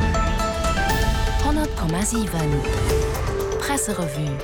100,7 Presserevue.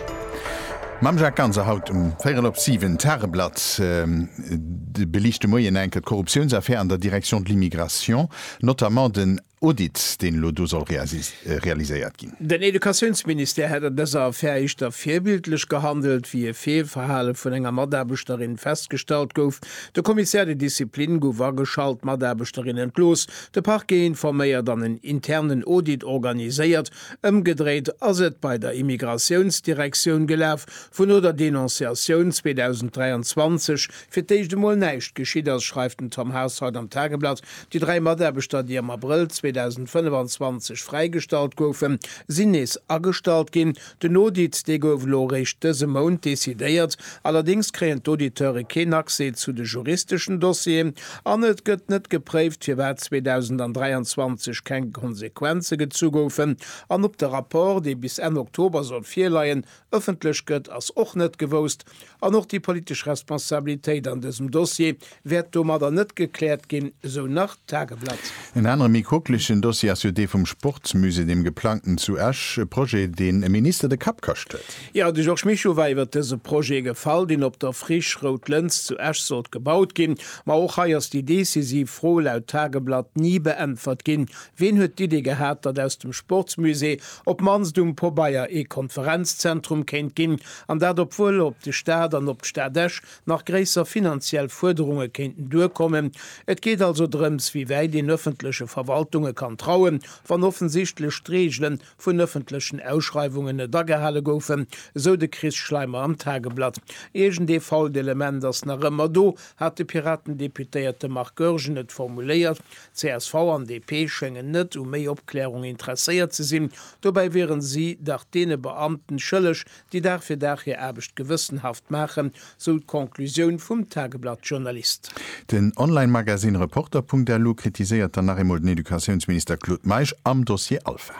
Mam Jacques Ganser haut um véirel op siwen Tageblatt. De beliicht de Moien enke d'Korruptiounsaffär an der Direction de l'immigration, notamment den Audit, deen elo do soll realiséiert ginn. Den Educatiounsministère hätt an dëser Affär éischter virbildlech gehandelt, wéi e Feelverhale vun enger Mataarbechterin festgestallt gouf. De Commissaire de discipline gouf ageschalt, d'Mataarbeschterin entlooss, De Parquet informéiert an en internen Audit organiséiert. Ëmgedréit ass et bei der Immigratiounsdirektioun gelaf, wou no der Denonciatioun 2023 fir d'éischt emol näischt geschitt ass, schreift den Tom Haas haut am Tageblatt. Déi dräi Mataarbechter, déi am Abrëll 2025 fräigestallt goufen, sinn nees agestallt ginn. Den Audit, dee gouf elo eréischt dëse Mount decidéiert. Allerdéngs kréien d'Auditeure keen Accès zu de juristeschen Dossieren an et gëtt net gepréift, firwat 2023 keng Konsequenze gezu goufen. An ob de Rapport, dee bis Enn Oktober soll virleien, ëffentlech gëtt, ass och net gewousst. An och déi politesch Responsabilitéit an dësem Dossier wäert domadder net gekläert ginn, esou nach d'Tageblatt. En anere méi quoklechen Dossier ass jo dee vum Sportsmusée, deem geplangten zu Esch. E Projet, deen e Minister de Kapp kascht huet. Jo, de Georges Mischo war iwwer dëse Projet gefall, deen op der Friche Rout Lëns zu Esch sollt gebaut ginn. Ma och hei ass déi decisiv Fro laut Tageblatt ni beäntwert ginn. Ween huet d'Idee gehat, datt aus dem Sportsmusée op d'mannst um Pobeier ee Konferenzzentrum kéint ginn? An dat obwuel op de Staat an op d'Stad Esch nach gréisser finanziell Fuerderunge kéinten duerkommen. Et geet also drëms, wéi wäit een ëffentleche Verwaltunge kann trauen, wann offensichtlech d'Reegele vun ëffentlechen Ausschreiwungen net agehale goufen, esou de Chris Schleimer am Tageblatt. Iergend ee fault Element ass nach ëmmer do, hat de Piraten-Deputéierte Marc Goergen et formuléiert. Csv an DP schéngen net u méi Opklärung interesséiert ze sinn, dobäi wieren si dach deene Beamten schëlleg, déi Dag fir Dag hir Aarbecht gewëssenhaft maachen, sou d'Conclusioun vum Tageblatt-Journalist. Den Online-Magazine Reporter.lu kritiséiert dann nach eemol den Educatiounsminister Claude Meisch am Dossier Alpha.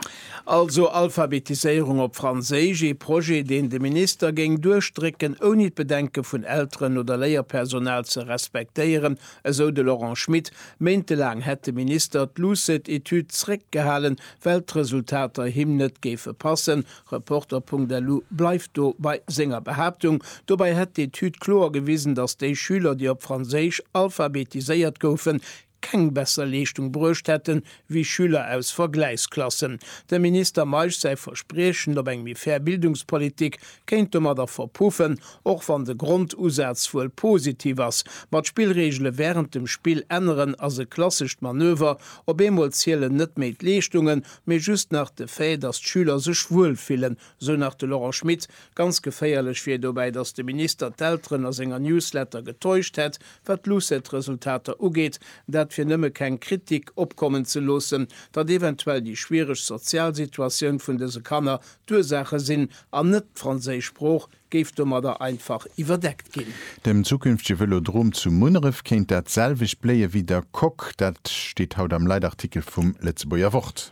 Also Alphabetiséierung op Franséisch, ee Projet, deen de Minister géing duerchdrécken, ouni d'Bedenke vun Elteren oder Léierpersonal ze respektéieren, Esou de Laurent Schmit. Méintelaang hätt de Minister d'Lucet-Etüd zréckgehalen, well d'Resultater him net géife passen. Reporter.lu bleift do bei senger Behaaptung. Dobäi hätt d'Etüd kloer gewisen, datt déi Schüler, déi op Franséisch alphabetiséiert goufen, keng besser Leeschtung bruecht hätten, wéi Schüler aus Vergläichsklassen. Dem Minister Meisch säi Verspriechen op eng méi fair Bildungspolitik kéint domadder verpuffen, och wann de Grondusaz wuel positiv ass, ma d'Spillreegele wärend dem Spill änneren ass e klassescht Manöver, op eemol zielen net méi d'Leeschtungen, mee just nach de Fait, datt d'Schüler sech wuel fillen, sou nach de Laurent Schmit. Ganz geféierlech wier dobäi, datt de Minister d'Elteren a senger Newsletter getäuscht hätt, Wat d'LUCET-Resultater ugeet, dat fir nëmme keng Kritik opkommen ze loossen, datt eventuell déi schwiereg sozial Situatioun vun dëse Kanner d'Ursaache sinn an net d'franséisch Sprooch géif domadder einfach iwwerdeckt ginn. Dem zukünftege Vëlodrom zu Munneref kéint dat selwecht bléie wéi der Coque. Dat steet haut am Leitartikel vum Lëtzebuerger Wort.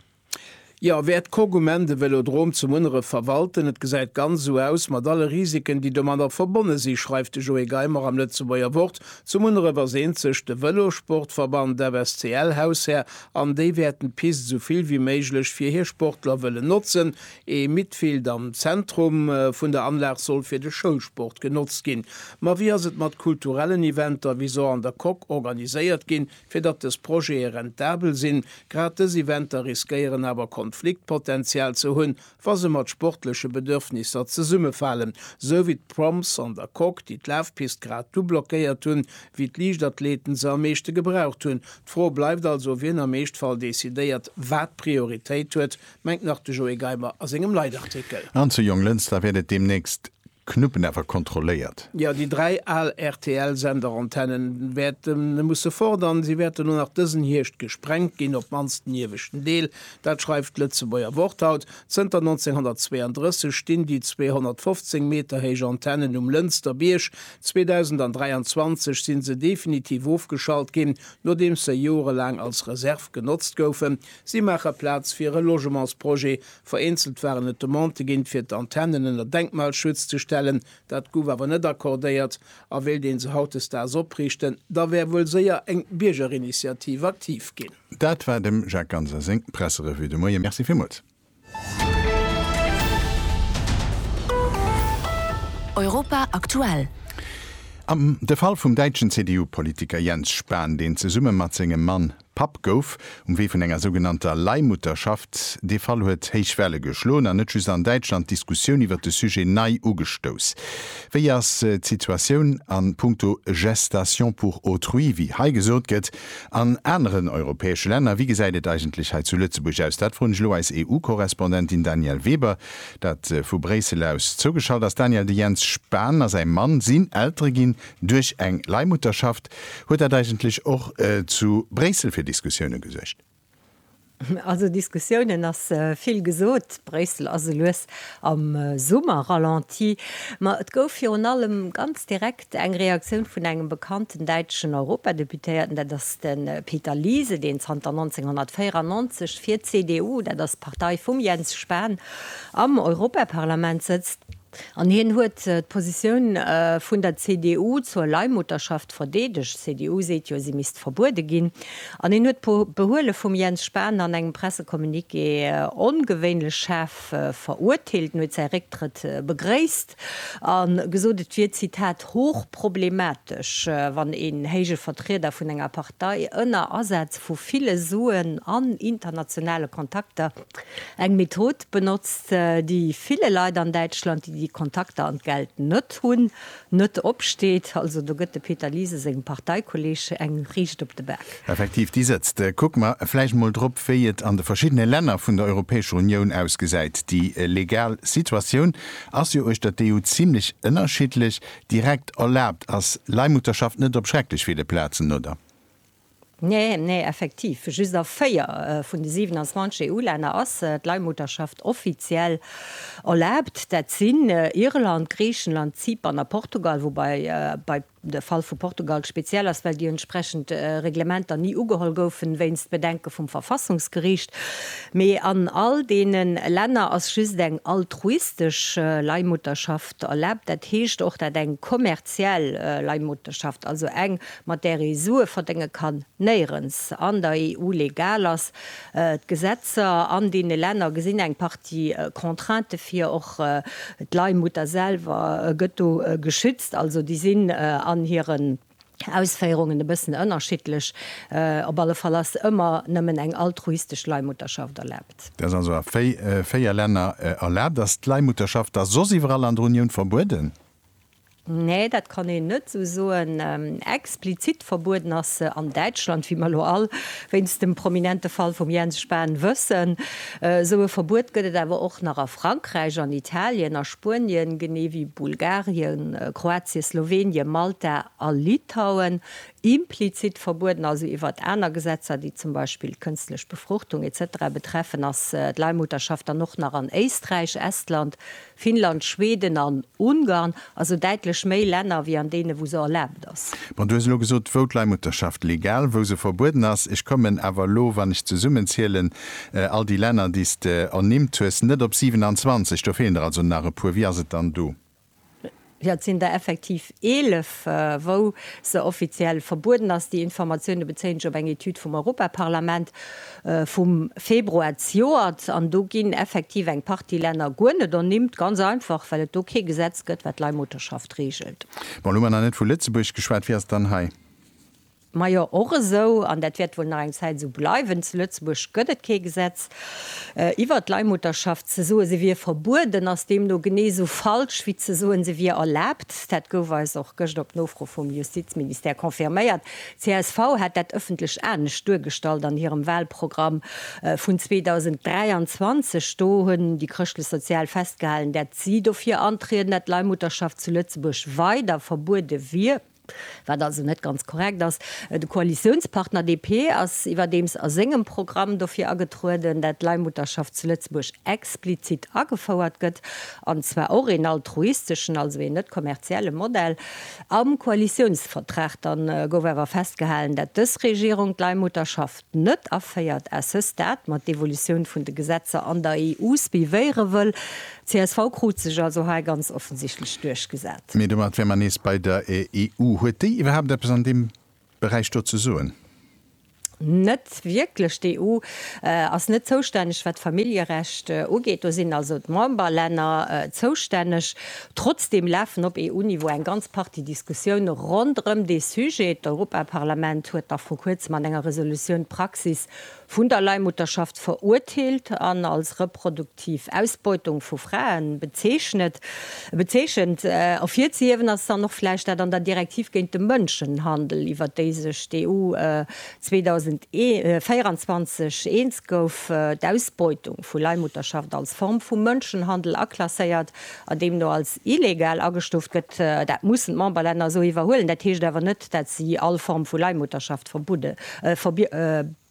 Jo, wäert d'Cogoumen de Vélodrome zu Munneref verwalten? Et gesäit ganz esou aus, mat alle Risiken, déi domadder verbonne si, schreift de Joé Geimer am Lëtzebuerger Wort. Zu Munneref ass eenzeg de Vëlossportverband FSCL Haushär an déi wäerten d'Pist esou vill wéi méiglech fir hir Sportler wëllen notzen. Ee Midfield am Zentrum vun der Anlag soll fir de Schoulsport genotzt ginn. Ma wéi ass et mat kulturellen Eventer, wéi se an der Coque organiséiert ginn? Fir datt dës Projete rentabel sinn, grad dës Eventer riskéieren awer Konfliktpotential ze hunn, wa se mat sportleche Bedürfnisser zesummefalen, sou wéi d'Proms an der Coque, déi d'Lafpist grad du blockéiert hunn, wéi d'Liichtathleten se am meeschte gebraucht hunn. D'Fro bleift also, wien am Eeschtfall decidéiert, wat Prioritéit huet, mengt nach de Joé Geimer a sengem Leitartikel. An zu Jonglënster wäert et deemnächst Knuppen awer kontrolléiert. Jo, déi dräi al RTL-Senderantennen wäerte musse fort an si wäerten och nach dësen Hierscht gesprengt ginn, op d'mannst den ieweschten Deel. Dat schreift d'Lëtzebuerger Wort haut. Zënter 1932 stinn déi 215 Meter héich Antennen um Lënster Bierg. 2023 si se definitiv ofgeschalt ginn, nodeems se jorelaang als Reserv genotzt goufen. Si maache Plaz fir e Logementsprojet Vereenzelt waren et Demandë ginn, fir d'Antennen ënner Denkmalschutz ze stellen. Dat gouf awer net accordéiert. A wéilt een se hautdesdaags opriichten, da wär wuel séier eng Biergerinitiativ aktiv ginn. Dat war dem Jacques Ganser seng Presserevue de Moie. Merci villmools. Europa aktuell. Am de Fall vum däitschen CDU-Politiker Jens Spahn, deen zesumme mat sengem Mann Papp gouf, um Wee vun enger sougenannter Leihmutterschaft. Dee Fall huet héich Welle geschloen an net just an Däitschland d'Diskussioun iwwer de Sujet nei ugestouss. Wéi ass d'Situatioun a Punkto Gestation pour autrui, wéi hei gesot gëtt, an aneren europäesche Länner? Wéi gesäit et eigentlech hei zu Lëtzebuerg aus? Dat froen ech elo eis EU-Korrespondentin Danièle Weber, dat vu Bréissel aus zougeschalt ass. Danièle, de Jens Spahn a säi Mann sinn Eltere ginn duerch eng Leihmutterschaft. Huet dat eigentlech och zu Bréissel fir Diskussioune gesuergt? Also Diskussiounen ass vill gesot. Bréissel ass elues am Summer-Ralenti. Ma et gouf virun allem ganz direkt eng Reaktioun vun engem bekannten däitschen Europadeputéierten, dat ass de Peter Liese, deen zanter 1994 fir d'CDU, dat ass d'Partei vum Jens Spahn, am Europaparlament sëtzt. An hien huet d'Positioun vun der CDU zur Leihmutterschaft verdeedegt. D'CDU seet jo, si misst verbuede ginn. An hien huet d'Behuele vum Jens Spahn an engem Pressecommuniqué ongewéinlech schaarf verurteelt. En huet säi Récktrëtt begréisst a gesot, et wier, Zitat, hochproblematesch, wann een héije Vertrieder vun enger Partei ënner Asaz vu ville Suen an internationale Kontakter, Eng Method benotzt, déi ville Leit an Däitschland, déi déi Kontakter an d'Geld net hunn, net opsteet. Also do gëtt de Peter Liese sengem Parteikolleeg eng riicht op de Bak. Effektiv, déi sëtzt. Kucke mer vläicht emol drop, wéi et an de verschiddene Länner vun der Europäescher Unioun ausgesäit. Déi legal Situatioun ass jo uechter d'EU zimlech ënnerschiddlech. Direkt erlaabt ass Leihmutterschaft net op schrecklech ville Plazen, oder? Nee, nee, effektiv. Just a 4 vun de 27 EU-Länner ass d'Leihmutterschaft offiziell erlaabt. Dat sinn Irland, Griichenland, Zypern a Portugal, woubai bei de Fall vu Portugal speziell ass, well déi entsprechend Reglementer ni ugeholl goufen, wéinst Bedenke vum Verfassungsgeriicht. Mee an all deene Länner ass just eng altruistesch Leihmutterschaft erlaabt, dat heescht och, dat eng kommerziell Leihmutterschaft, also eng, mat där ee Sue verdénge kann, néierens an der EU legal ass. D'Gesetzer an deene Länner gesinn eng Partie Contraintë vir. Och d'Leihmutter selwer gëtt do geschützt. Also déi sinn an hiren Ausféierungen e bëssen ënnerschiddlech. Op alle Fall ass ëmmer nëmmen eng altruistesch Leihmutterschaft erlaabt. Dat ass also a véier Länner erlaabt. Ass d'Leihmutterschaft da soss iwwerall an der Unioun verbueden? Nee, dat kann een net esou soen. Explizit verbueden ass se an Däitschland, wéi mer elo all wéinst dem prominente Fall vum Jens Spahn wëssen. Esou e Verbuet gëtt et awer och nach a Frankräich, an Italien, a Spuenien, genee wéi Bulgarien, Kroatien, Slowenien, Malta a Litauen. Implizit verbueden, also iwwert aner Gesetzer, déi zum Beispill d'kënstlech Befruchtung, etc. Betreffen, ass d'Leihmutterschaft dann och nach an Éisträich, Estland, Finnland, Schweden an Ungarn, also däitlech méi Länner wéi an deene wou se erlaabt ass. Bon, du hues elo gesot, wou d'Leihmutterschaft legal, wou se verbueden ass. Ech kommen awer elo, wann ech zesummenzielen, all déi Länner déi s de ernimmt hues, net op 27. Do feelen der also nach e puer. Wéi ass et dann do? Jo, et sinn der effektiv 11, wou se offiziell verbueden ass. Déi Informatioune bezéien ech op eng Etüd vum Europaparlament vum Februar zejoert. An do ginn effektiv eng Partie Länner guer net ernimmt, ganz einfach, well et do kee Gesetz gëtt, wat d'Leihmutterschaft reegelt. Bon, elo hu mer nach net vu Lëtzebuerg geschwat. Wie ass dann hei? Majo, och esou, an dat wäert wuel nach eng Zäit esou bleiwen, zu Lëtzebuerg gëtt et kee Gesetz iwwert d'Leihmutterschaft. Ze soen, se wier verbueden, ass deemno genee esou falsch, wéi ze soen, se wier erlaabt. Dat gouf eis och gëscht op Nofro vum Justizministère confirméiert. Csv hat dat ëffentlech anescht duergestallt an hirem Wahlprogramm vun 2023. Do hunn déi Chrëschtlech-Sozial festgehalen, dat si dofir antrieden, dat d'Leihmutterschaft zu Lëtzebuerg weider verbuede wier. Wat also net ganz korrekt ass. De Koalitiounspartner DP ass iwwerdeems a sengem Programm dofir agetrueden, dat d'Leihmutterschaft zu Lëtzebuerg explizit agefouert gëtt, an zwar och een altruisteschen, also een net kommerzielle Modell. Am Koalitiounsvertrag dann gouf awer festgehalen, dat dës Regierung d'Leihmutterschaft, net aféiert, à ce stade, mat d'Evolutioun vun de Gesetzer an der EU suivéiere wëll. Csv krut sech also hei ganz offensichtlech duerchgesat. Mee domat wäre mer nees bei der EU. Huet déi iwwerhaapt eppes an deem Beräich do ze soen? Net wierklech. D'EU ass net zoustänneg, wat d'Familljerecht ugeet. Do sinn also d'Memberlänner zoustänneg. Trotzdeem lafen op EU-Niveau eng ganz Partie Diskussioune ronderëm dee Sujet. D'Europaparlament huet nach vru kuerzem an enger Resolutioun d'Praxis vun der Leihmutterschaft verurteelt an als reproduktiv Ausbeutung vu Frae bezeechnet. Ervirzehiewen ass dann och vläicht dat an der Direktiv géint de Mënschenhandel, iwwert déi sech d'EU 2024 eens gouf, d'Ausbeutung vu Leihmutterschaft als Form vu Mënschenhandel aklasséiert an deemno als illegal agestuuft gëtt, dat mussen d'Memberlänner esou iwwerhuelen. Dat heescht awer net, dat si all Form vu Leihmutterschaft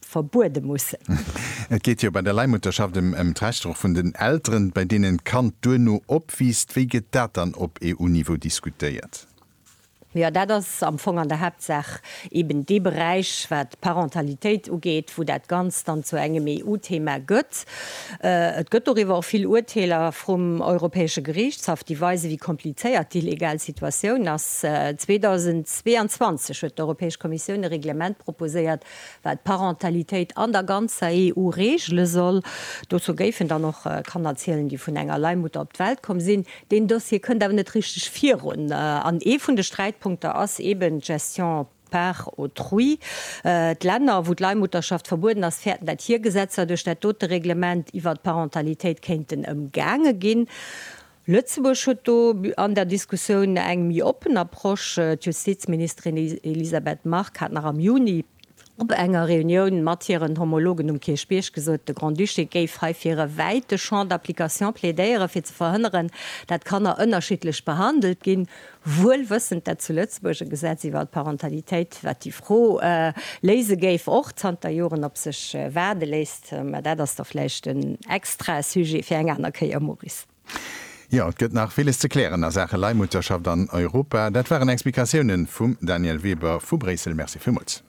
verbuede mussen. Et geet jo bei der Leihmutterschaft ëm d'Rechter och vun den Elteren, bei deenen d'Kand duerno opwiisst. Wéi gëtt dat dann op EU-Niveau diskutéiert? Jo, dat ass am Fong an der Haaptsaach eben dee Beräich, wat d'Parentalitéit ugeet, wou dat Ganzt dann zu engem EU-Thema gëtt. Et gëtt doriwwer och vill Urteeler vrum Europäesche Geriichtshaff, déi weisen, wéi komplizéiert déi legal Situatioun ass. 2022 huet d'Europäesch Kommissioun e Reglement proposéiert, wat d'Parentalitéit an der ganzer EU regele soll. Dozou géifen dann och Kannerzielen, déi vun enger Leihmutter op d'Welt komm sinn. Deen Dossier kënnt awer net richteg virun. An ee vun de Sträitpunkter ass eben d'Gestion par autrui. D'Länner, wou d'Leihmutterschaft verbueden ass, fäerten, dat hir Gesetzer duerch dat dote Reglement iwwert d'Parentalitéit kéinten ëmgaange ginn. Lëtzebuerg huet do an der Diskussioun eng méi oppen Approche. D'Justizministerin Elisabeth Margue hat nach am Juni Op enger Reunioun mat hiren Homologen um Kierchbierg gesot, de Grand-Duché géif hei fir e wäite Champ d'application plädéieren, fir ze verhënneren, dat Kanner ënnerschiddlech behandelt ginn, wuel wëssend, dat zu Lëtzebuerg e Gesetz iwwer d'Parentalitéit, wat déi Fro léise géif, och zanter Joren op sech waarde léisst. Mä dat ass da vläicht en extra Sujet fir eng aner Kéier, Maurice. Jo, et gëtt nach villes ze klären a Saache Leihmutterschaft an Europa. Dat waren Explikatiounen vum Daniel Weber vu Bréissel. Merci villmools.